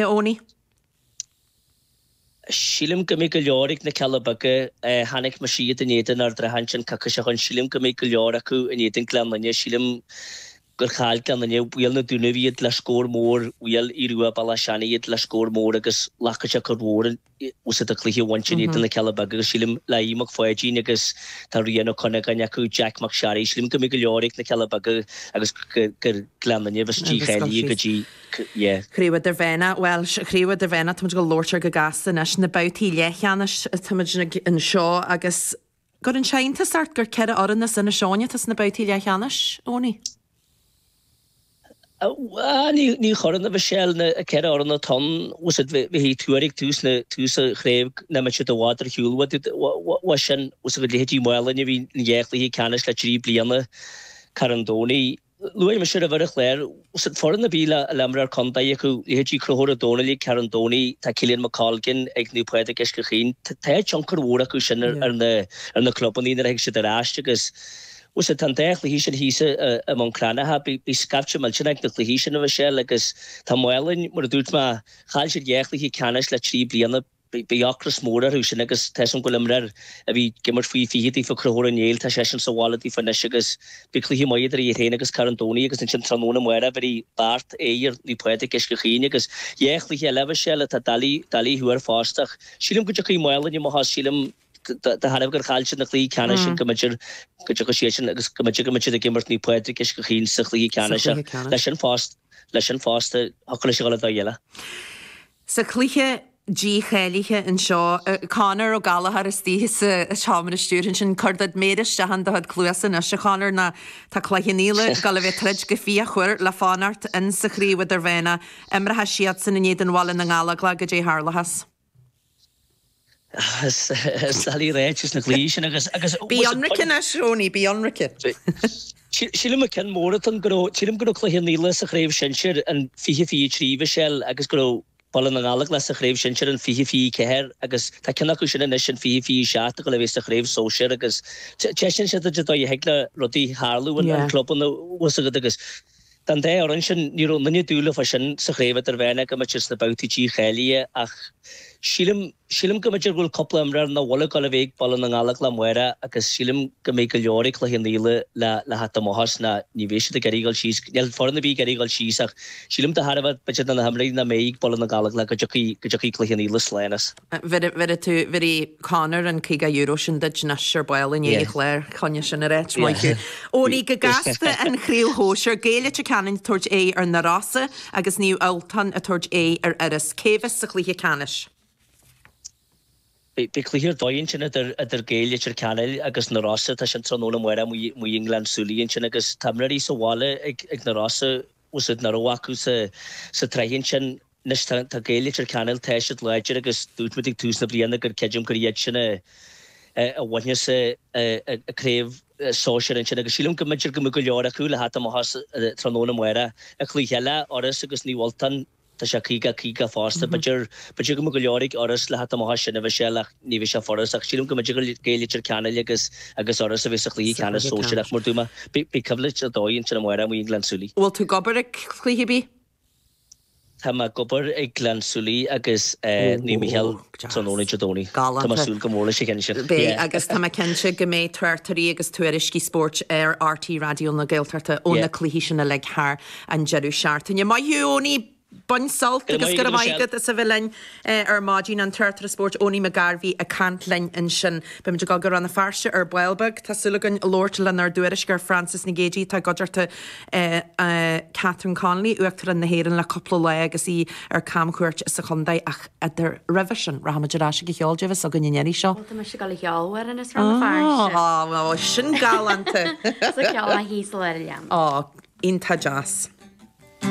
Owenie. Sílim go mbeidh go leor ag na Cealla Beaga. Chonaic mise iad in éadan Ard an Rátha ansin coicís ó shin. Sílim go mbeidh go leor acu in éadan Gleann Fhinne. Sílim gur chaill Gleann Fhinne, Bhuail na Dúnaibh iad le scór mór, bhuail Aodh Rua, Béal Átha Seanaidh iad le scór mór agus glacfaidh sé cor mhór in. tá 'fhios agat, cluiche a bhaint in éadan na Cealla Beaga agus sílim, le Aodh Mac Pháidín agus tá Rian Ó Cuinneagáin acu, Jeaic Mac Searraigh, sílim go mbeidh go leor ag na Cealla Beaga agus gur Gleann Fhinne a bheas dícháilithe go dtí an Chraobh Idirmheánach. Bhuel, an Chraobh Idirmheánach, táimid ag labhairt air go gasta anois, na babhtaí leathcheannais, táimid anseo agus. Cuireann sé iontas ort gur ceithre fhoireann as Inis Eoghain atá sna babhtaí leathcheannais, a Owenie? Ní chuireann, a Mhichelle. Na ceithre fhoireann atá ann, tífeadh tú ag tús an chraobh nach mbeadh siad i bhfad ar shiúl uaidh sin agus leithéidí Mhálainn a bhí in dhá chluiche ceannais le trí bliana, Carn Domhnaigh. Luaigh mé seo roimhe ar an chlár. Tá 'fhios agat, foireann a bhfuil imreoir contae acu, leithéidí Conchúr Ó Dónaill ag Carn Domhnaigh, tá Caolán Mac Colgan ag Naomh Pádraig Uisce Chaoin, tá tionchar mór acu sin ar na clubannaí nuair a thig siad ar ais agus tá an dá chluiche sin thíos i mBun Cranncha, beidh scaifte millteanach ag na cluichí sin, a Mhichelle, agus tá Málainn, mar a dúirt mé, chaill siad dhá chluiche ceannais le trí bliana. Beidh ocras mór orthu sin agus tá 'fhios agam go bhfuil imreoir a bhí ag imirt faoi fiche daofa Conchúr Ó Néill, tá seisean sa bhaile daofa anois agus beidh cluiche maith idir iad féin agus Carn Domhnaigh agus ansin tráthnóna amárach beidh Beart in éadan Naomh Pádraig, Uisce Chaoin agus cluiche eile a bheas, eh, atá doiligh, doiligh a thuar fosta ach sílim go dtiocfaidh Málainn amach as, sílim de thairbhe gur chaill siad na cluichí ceannais sin go mb'fhéidir go dtiocfadh siad sin agus go mb'fhéidir go mbeidh siad ag imirt Naomh Pádraig, Uisce Chaoin sa chluiche ceannais ach leis sin fosta, leis sin fosta thiocfadh leis a dhul an dóigh eile. Sa chluiche dícháilithe anseo, Conor Ó Gallchóir istigh sa tseomra stiúrtha ansin, cuir do chuid méar isteach in do chuid cluasa anois, a Chonor, nó tá Cloich Cheann Fhaola ag dul a bheith ag troid go fíochmhar le fanacht insa Chraobh Idirmheánach, imreoidh siadsan in éadan Bhaile na nGallóglach, caidé a tharlóchas. Is doiligh a ráit insna cluichí sin agus, agus. Bí ionraic anois, Owenie, bí ionraic. Sílim an ceann mór atá ann go raibh, sílim go raibh Cloich Cheann Fhaola sa Chraobh Shinsir in fiche fiche trí, a Mhichelle, agus go raibh Baile na nGallóglach sa Chraobh Shinsir in fiche fiche ceathair agus tá ceann acu sin anois in fiche fiche seacht ag dul a bheith sa Chraobh Sóisir agus taispeánann sé duit an dóigh a dtig le rudaí tarlú in clubanna, tá 'fhios agat, agus Don dá fhoireann sin, ní raibh aon duine ag dúil fá sin sa chraobh idirmheánach go mbeadh siad sna babhtaí dícháilithe ach sílim, sílim go mb'fhéidir go bhfuil cúpla imreoir nach bhfuil ag dul a bheith ag Baile na nGallóglach amárach agus sílim go mbeidh go leor ag Cloich Cheann Fhaola le le theacht amach as nó ní bheidh siad ag iarraidh dul síos, níl foireann ar bith ag iarraidh dul síos ach sílim de thairbhe b'fhéidir de na himreoirí nach mbeidh ag Baile na nGallóglach go dtiocfaidh, go dtiocfaidh Cloich Cheann Fhaola slán as. Bhéarfaidh tú, bhéarfaidh Conor an caoga euro sin duit anois ar ball i ndiaidh an chláir, coinnigh sin ar áit, maith thú. Eoiní go gasta an chraobh shóisir, Gaeil Leitir Ceanainn ag tabhairt aghaidh ar Na Rossa agus Naomh Ultán ag tabhairt aghaidh ar Iorras. Cé bheas sa chluiche ceannais? Beidh cluiche ar dóigh ansin idir Gaeil Leitir Ceanainn agus Na Rossa, tá sin tráthnóna amárach amuigh i nGleann tSúilí ansin agus tá imreoirí sa bhaile ag Na Rossa, úsaid nach raibh acu sa tsraith ansin. Anois tá Gaeil Leitir Ceanainn tar éis dul i láidir agus dúirt muid ag tús na bliana gur creidim gur iad sin a bhainfeas an chraobh sóisear ansin agus sílim go mb'fhéidir go mbeidh go leor acu le theacht amach as tráthnóna amárach. An cluiche eile Iorras agus Naomh Ultán. Tá sé caoga a caoga fosta. B'fhéidir go mbeidh go leor ag Iorras le theacht amach as sin a Mhichelle ach ní bheidh sé furast ach sílim go mb'fhéidir gur Gaeil Leitir Ceanainn agus agus Iorras a bheidh sa chluiche ceannais sóisear ach mar a dúirt mé beidh coimhlint ar dóigh ansin amárach amuigh i nGleann tSúilí. Bhfuil tú ag obair ag cluiche ar bith? Tá mé ag obair ag Gleann tSúilí agus Naomh Micheál tráthnóna Dé Domhnaigh. Tá mé ag súil go mór leis an gceann sin. Beidh agus tá mé cinnte go mbeidh tráchtairí agus tuairiscí spóirt ar RTÉ Raidió na Gaeltachta ó na cluichí sin uilig thar an deireadh seachtaine. Maith thú Eoiní, bain sult agus go raibh maith agat as a bheith linn ar maidin. An tráchtaire spóirt Eoiní McGarvey ag caint linn ansin. Beimid ag gabháil go Rann na Feirste ar ball beag. Tá súil againn labhairt lenár dtuairisceoir Frances Nic Géadaigh atá i gcuideachta Catherine Connolly, Uachtarán na hÉireann le cúpla lá agus í ar camchuairt sa chontae ach roimhe sin. Rachaimid ar ais chuig an cheol, caidé a bheas againn an iarraidh seo. Bhuel, tá mise ag dul a cheol amhrán as Rann na Feirste. Ó, bhuel sin galánta. Sa cheol Thíos i Lár an Ghleanna. Ó, iontach deas.